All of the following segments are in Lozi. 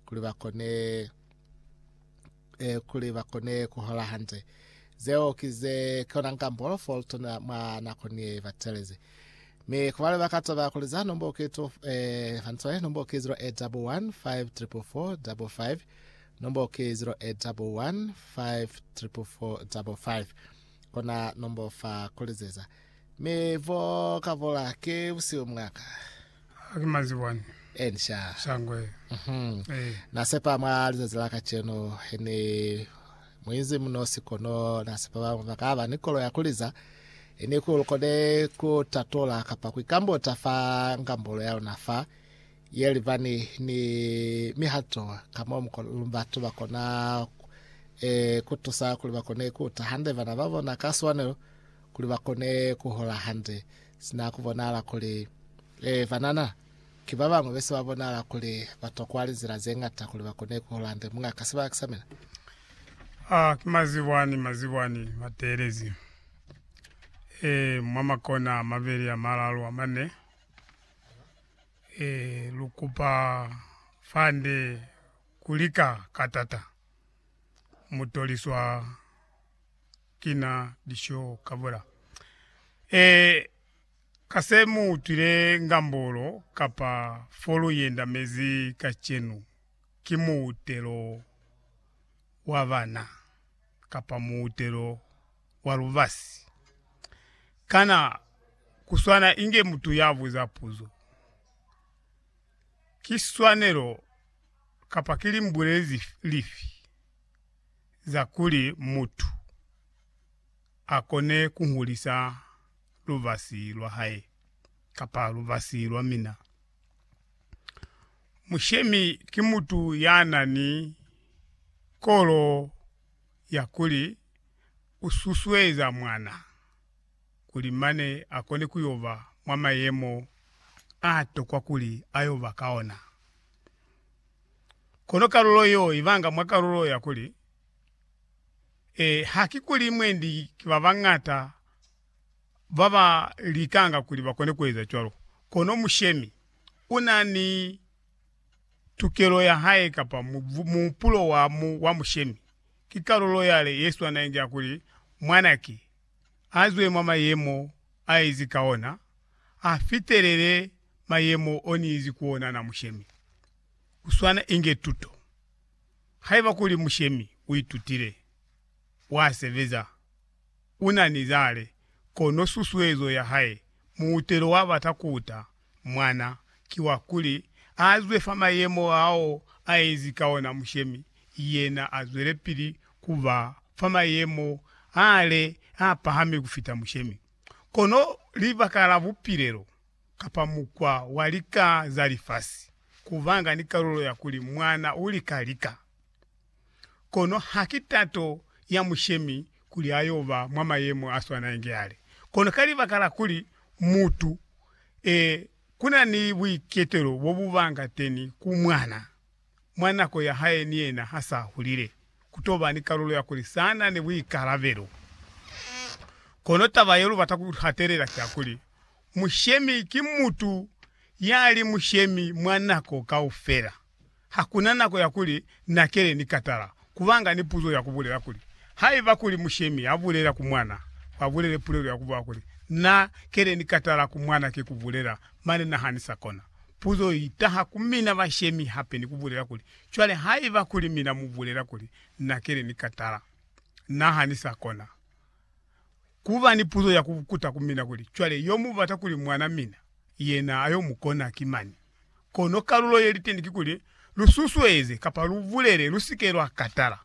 kuli ba kone eh, kuli ba kone ku hola hantle zeo ki ze kona nka mbolo for tona mwa nako ni ba teleze mi ku bale ba ka taba kuli za nombo ke to eh hantle nombo ke 0811 5445 nombo ke 0811 5445 kona nombo fa kulizeza Mi bo ka bola ke busihu mwa ka. Ha ki mazibwani. Ensha. Shangwe. Mhm. Eh. Na sepa mwa lizazi la kacenu he ni muinzi munosi kono na sepa ba banga ba ka ba ni kolo ya kuliza. He ni ku lukone ku tatola kapa ku ikambota fa ngambolo ya luna fa ye libani ni mihato ka mo mu lu batu ba kona eh, ku tusa kuli ba kone ku ta hande bana ba bona ka swanelo. kuli ba kone ku hola hande, sina ku bonahala kuli, ee, banana ki ba bañwi be se ba bonahala kuli ba tokwa linzila ze ñata kuli ba kone ku hola hande. Muñaka, sibaka sa mina. A ki mazibwani, mazibwani mateelezi, ee, mwa makona a mabeli, a malalu, a mane, ee, lu kupa fande ku lika ka tata, mu toliswa. kina lisho kabola. E, ka se mu utwile ngambolo kapa fo lu yenda mezi kacenu, ki muutelo wa bana kapa muutelo wa lubasi. Kana ku swana inge mutu ya buza puzo, Ki swanelo kapa ki limbuleli lifi? za kuli mutu a kone ku hulisa lubasi lwa hae kapa lubasi lwa mina. Mushemi ki mutu ya na ni kolo ya kuli u susueza mwana kuli mane a kone ku yo ba mwa mayemo a tokwa kuli a yo ba ka ona. Kono kalulo yeo ibanga mwa kalulo ya kuli, E, haki kuli mwendi ki babañata baba likanga kuli bakone kueza cwalo, kono mushemi una ni tukelo ya hae kapa muhupulo wa mushemi. Ki kalulo yale yeswanañi ya kuli, Mwanaki, azwe mwa mayemo aezi ka ona, afitelele mayemo oniizi ku ona na mushemi. Kuswana inge tuto. Haiba kuli mushemi uitutile, wasebeza, unani zale, kono susuezo yahae, muutelo wabata kuuta, Mwana ki wa kuli a zwe fa mayemo ao a ezi ka ona mushemi, yena a zwelepili ku ba fa mayemo a le a pahami ku fita mushemi. Kono libaka la bupilelo, kapa mukwa wa lika za lifasi, ku banga ni kalulo ya kuli mwana u lika lika. Kono haki tato ya Mushemi kuli ayoba mwa mayemo aswanainge yale. Kono ka libaka la kuli mutu e, kuna ni buiketelo bobubanga teni ku mwana, mwa nako ya hae ni yena ha sa hulile, kutoba ni kalulo ya kuli sana ni buikalabelo. Kono taba ye lubata ku hatelela ki ya kuli, Mushemi ki mutu yali mushemi mwa nako kaufela. Hakuna nako ya kuli na kele ni katala kubanga ni puzo ya kubulela kuli, Haiba kuli mushemi ya bulela ku mwana, ba bulele pulelo ya kubuwa kuli, Na kele ni katala ku mwana ki kubulela, mane na hanisa kona. Puzo i taha ku mina bashemi hape ni kubulela kuli, Cwale haiba kuli mina mu bulela kuli, Na kele ni katala, na hanisa kona. Kuba ni puzo ya kukuta ku mina kuli, Cwale yo mu bata kuli mwana mina, yena ayo mukona ki mani? Kono kalulo ye li teñi kikuli lu susueze kapa lu bulele, Lu si ke lwa katala.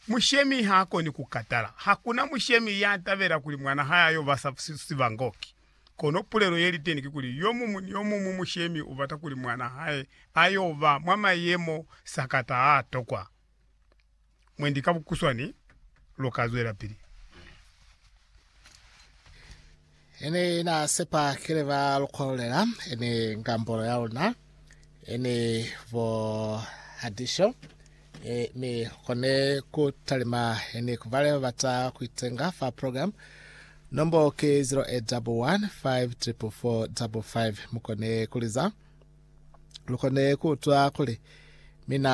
Mushemi ha a koni ku katala. Hakuna mushemi ya tabela kuli mwan'a hae a yo ba sibangoki. Kono pulelo ye li teñi kikuli, yo muñwi ni yo muñwi mushemi u bata kuli mwan'a hae a yo ba mwa mayemo sakata a a tokwa. mwendi ka bukuswani lu ka zwelapili. Ene na sepa kile ba lukololela ene ngambolo ya luna ene bo hadisho e, mi kone ku talima ene ku bale ba bata ku itenga fa program nombo ke 08154455 mukone kuliza lukone ku utwa kuli mina